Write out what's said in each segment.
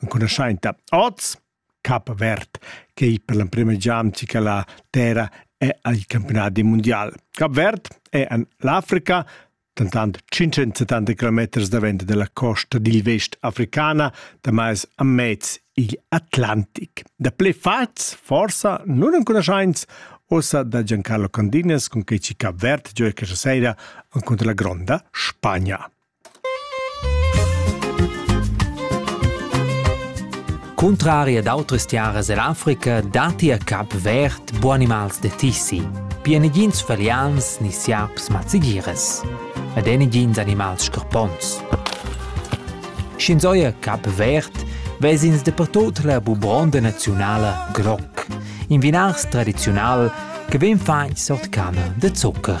enconuschainta oz Cap Verd che ei per l'emprema giamci che la terra è al campionat mondial. Cap Verd è en l'Africa dentant 570 km davent della costa dil vest africana, da mais a mez igl Atlantic. Da ple fats, forsa, non enconoschains, ossa da Giancarlo Candinas con che ci Cap Verd gioia questa sera contro la gronda Spagna. Cuntrari ad autras tiaras ell'Africa datti a Cap Verd bu animals da tissi. Pia negins falians ni siaps mazzigiras. Ed è negins animals scarpons. Sch'ins oia Cap Verd, vesins dapertut la bubronda naziunala groc, in vinars tradiziunal che vegn fatg sort canna da zucker.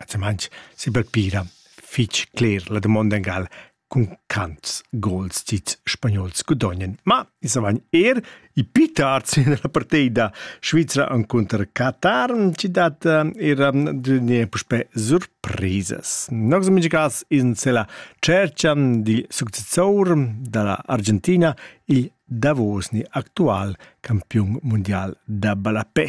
Atsamantsch sebapira fich cler la damonda ingal cun quants gols ch'ils spagnols gudognan. Ma i savagn er i pi tard sin la partida svizra encunter Qatar chi dat era d'unir puspè surprisas. Nox in mincha cas ins la tschercha dil successor da la Argentina, il davos ni actual campiun mundial da ballapè.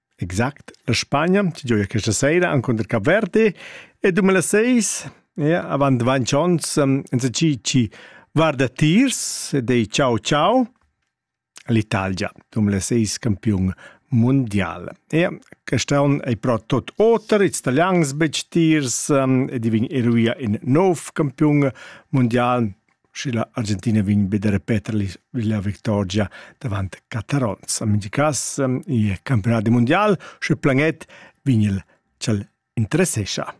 Exact. La Spagna ci gioia questa seira encunter Cap Verde e 2006 ja, avant vinc ons insatgi chi guarda tirs ed ei ciao ciao l'Italia 2006 campiun mundial. Ja, quest on ei però tot oter, ils italians betg tirs um, ed i vegn eruia in nov campiun mundial Sche la Argentina vegn be da repeter la victorgia davant Catarons. En mintga cas è campionat mundial, sche planet vegn il ch'el interessescha.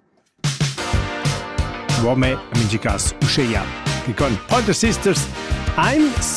Uomo en mintga cas uscheia che con Pointer Sisters ein